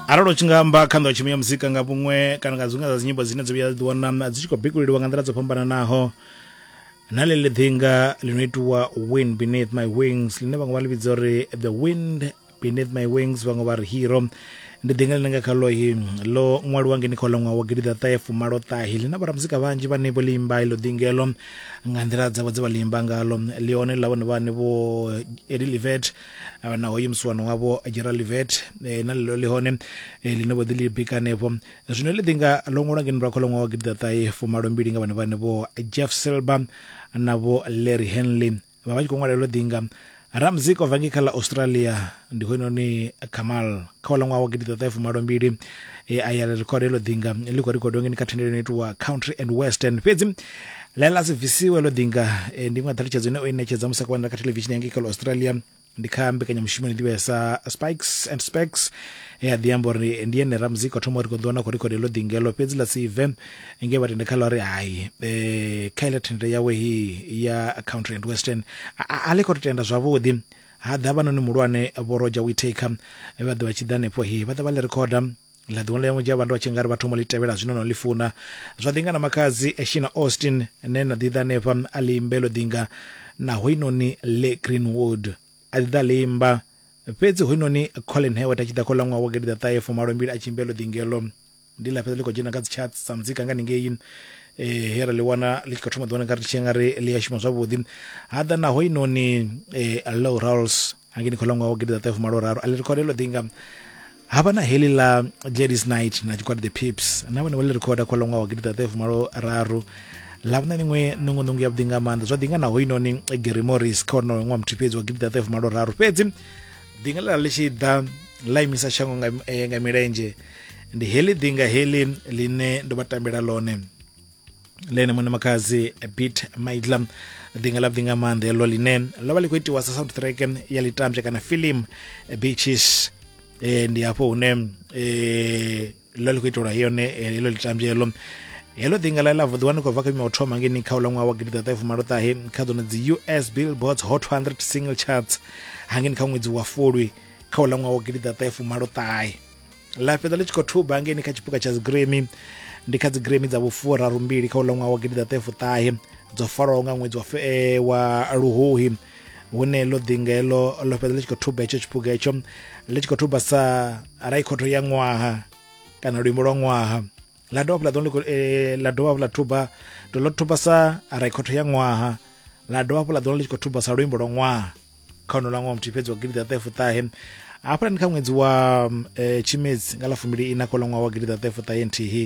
arali u tshi nga amba kha nḓowetshumo ya muzika nga vhuṅwe kana nga dziṅwe dza dzinyimbo dzine dzo vhuya dzi wana dzi tshi khou bikuleliwa nga nḓila dzo fhambananaho na ḽe ḽi ḓinga ḽi no itiwa wind beneath my wings ḽine vhaṅwe vha ḽi vhidza uri the wind beneath my wings vhaṅwe vha ri hero ndi ḓinga ḽine nga khalohi ḽo ṅwaliwa ngeni kha uḽa ṅwaha wa gidiḓaṱahe fumalo ṱahi ḽi na vhoramuzika vhanzhi vhane vho ḽi imba ilo ḓingelo nga nḓila dzavho dze vha ḽi imba ngalo ḽi hone ḽa vhone vhane vho eli livet na hoyu musiwana wavho gerald livet e, na lilo ḽi hone e, ḽine vho ḓi ḽi bika hanefho zwino ḽi ḓi nga ḽo ṅwalwa ngeno lwa kha ḽoṅwa wa gidiḓaṱahe fumalo mbili nga vhana vhane vho jeff silber na vho larry henley vha vha tshi khou ṅwalela ḽo ḓi nga ramzik o vangi kha ḽa australia ndi hoyunoni kamal kha wa ḽa ṅwaha wa gidiḓaṱahe fumalo mbili e a ya ḽi record heḽo ḓinga ḽi khou record ngeni kha thendelo ino itiwa country and western fhedzi ḽa ḽa si bvisiwe ḽo ḓinga eh, ndi iṅwe ya ṱhalutshedzo ine o i ṋetshedza musi a khou wanala kha thelevishini ya ngei kha ḽa australia ndi kha mbekanyamushumo ine ḓivhea sa spikes and specs e a ḓi amba uri ndi ene ramuzika o thoma uri khou ḓiwana khou record heḽo ḓinga heḽo fhedzi ḽa si bve ngei vha tende kha ḽa uri hai eh, kha iḽa thendelo yawe hii ya country and western a- a a ḽi khou to tenda zwavhuḓi Ha ḓa havhanoni muhulwane Vho Roger Whittaker vhe vha ḓa vha tshi ḓa hanefho he vha ḓa vha ḽi rekhoda ḽa ḓiwana ḽi ya vhandu vha tshi nga ri vha thoma ḽi tevhela zwino no ḽi funa zwa ḓinga na makhadzi Shina Austin ne na ḓi ḓa hanefha a ḽi imbe ḽo ḓinga na hoinoni Le Greenwood a ḓi ḓa ḽi imba fhedzi hoinoni Colin Hewett a tshi ḓa kho ḽa ṅwaha wa gidi ḓa ṱahe fumalo mbili a tshi imbe ḽo ḓingeḽo ndi ḽa fhedza ḽi khou dzhena kha dzi charts sa muzika nga ningei eh, he ra ḽi wana ḽi tshi khou thoma ḓiwana nga ri tshi nga ri ḽi a shuma zwavhuḓi ha ḓa naho inoni eh, low rolls hangeni khola ṅwaha wa gidi ḓaṱahe fumalo raru a ḽi rekhoda ḽo ḓinga ha vha na heḽi ḽa ladies night na tshigwada the pips na vhone vha ḽi rekhoda khola ṅwaha wa gidi ḓaṱahe fumalo raru ḽa vhona miṅwe nungunungu ya vhuḓi nga maanḓa zwa ḓinga naho inoni eh, gary morris kha wonoyo ṅwaha muthihi fhedzi wa gidi ḓaṱahe fumalo raru fhedzi ḓinga ḽa ḽi tshi ḓa ḽa imisa shango nga, eh, nga milenzhe ndi heḽi ḓinga heḽi ḽine ndo vha tambela ḽone lene muṋe makhadzi bit maidla ḓinga ḽa ḓinga maanḓa heḽo ḽine ḽo vha ḽi khou itiwa sa soundtrack ya litambya kana film beaches eh, ndi hafho hune eh, ḽo ḽi khou itelwa yone heḽo litambelo helo ḓinga ḽa ḽa vuḓiwa ni khou bva kha miwa thoma ngeni kha uḽa ṅwaha wa gidi ḓaṱahe fumaloṱahe kha ḓono dzi us billboards hot 100 single charts hangeni kha ṅwedzi wa fulwi kha uḽa ṅwaha wa gidi ḓaṱahe fumaloṱahe ḽa fhedza ḽi tshi khou thuba ngeni kha tshipuka tsha dzigremi ndi kha dzigremi dza vhufurarumbili kha uḽa ṅwaha wa gidi ḓaṱahe fuṱahe dzo faraho nga ṅwedzi wa, eh, wa luhuhi hune ḽo ḓinga heḽo ḽo fhedza ḽi tshi khou thuba hetsho tshiphuga hetsho ḽi tshi khou thuba sa raikhotho ya ṅwaha kana luimbo lwa ṅwaha ḽa dovha hafhu ḽa ḓo eh, ḽa dovha hafhu ḽa thuba to ḽo thuba sa raikhotho ya ṅwaha ḽa dovha hafhu ḽa ḓo ḽi tshi khou thuba sa luimbo lwa ṅwaha kha ono lwa ṅwaha muthihi fhedzi wa gidi ḓaṱahefuṱahe hafhaḽani kha ṅwedzi wa um, tshimedzi nga ḽa fumbili ina kha ḽa ṅwaha wa gidi ḓaṱahefuṱahe nthihi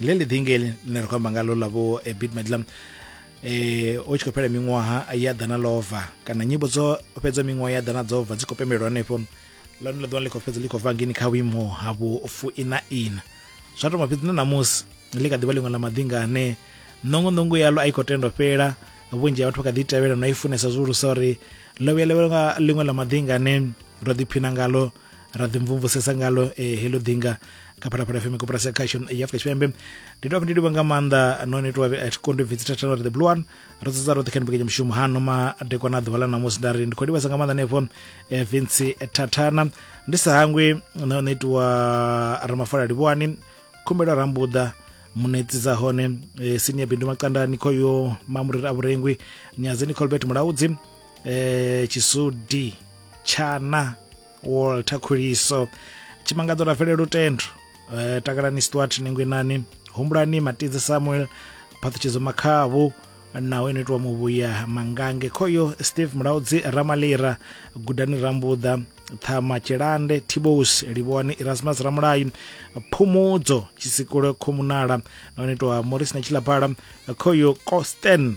leli ḓingeli ḽine ra khou amba ngalo ḽa vho eh, bit madlam eh o tshi khou fhela miṅwaha ya ḓana lova kana nyimbo dzo fhedza miṅwaha ya ḓana dzo bva dzi khou pembelwa hanefho lone ḽa ḓuvha ḽi khou fhedza ḽi khou bva ngini kha vhuimo ha vhu fuina ina zwa thoma fhedzi na ṋamusi ḽi kha ḓivha ḽiṅwe ḽa maḓinga ane ṋongoṋongo yalo a i khou tendo fhela vhunzhi ha vhathu vha kha ḓi tevhela no i funesa zwihulusa uri ḽo vhuya ḽa ḽiṅwe ḽa maḓinga ane ro ḓiphina ngalo ra ḓi mvumvusesa ngalo eh, heḽo ḓinga kha phalaphala fm koporasi ya khasho ya afrika tshipembe ndi tovha ndi livha nga maanḓa none tovha a thi kondi bvitsi thathana ri the blue one ro dzedza roṱhe kha ni mbekanya mushumo hano madekwa na ḓuvha ḽa namusi nda ri ndi khou livhasa nga maanḓa nefho eh, vinci thathana ndi sa hangwi na hone itiwa ramafola livhuwani khumbelo rambuḓa munetsi dza hone eh, senior bindu makandani khoyo mamuriri a vhurengwi nyadzeni colbert mulaudzi eh, chisudi tshana walter khuliso tshimangadzo ra fhelela lutendo eh, takalani stuart ningwinani humbulani matidzi samuel phaṱhutshedzo makhavhu naho ino itiwa muvhuya mangange khoyo steve mulaudzi ramalira gudani rambuḓa ṱhama tshilande tibos livhoni erasmus ramulayi phumudzo tshisikulo khomunala naho ino itiwa morris na tshilaphala khoyo costen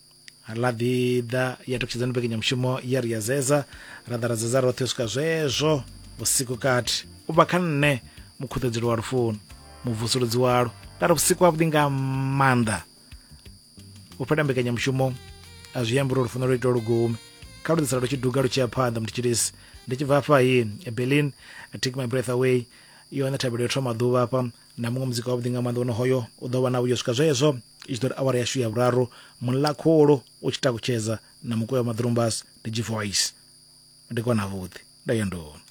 ḽa ḓi ḓa ya ṱutshedza ni mbekanyamushumo ya ri ya zeza ra ḓa ra zeza roṱhe u swika zwezwo vhusiku kati u bva kha nṋe mukhuṱedzelo wa lufuno muvusuludzi walo nda ri vhusiku havhuḓi nga maanḓa u fhela mbekanyamushumo a zwi ambi uri lufuno lwo itwa lugumi kha lu ḓisala lu tshi duga lu tshi ya phanḓa mutshitshilisi ndi tshi bva afha hi berlin take my breath away yone thabelo yo thoma ḓuvha hafha na muṅwe muzika wavhuḓi nga maanḓa wono hoyo u ḓo vha na vhuyo swika zwezwo i tshi ḓo ri awara yashu ya vhuraru muḽa khulu u tshi takutshedza na mukuya wa maḓurumbas ndi g voice ndi kona vhuḓi nda ya ndono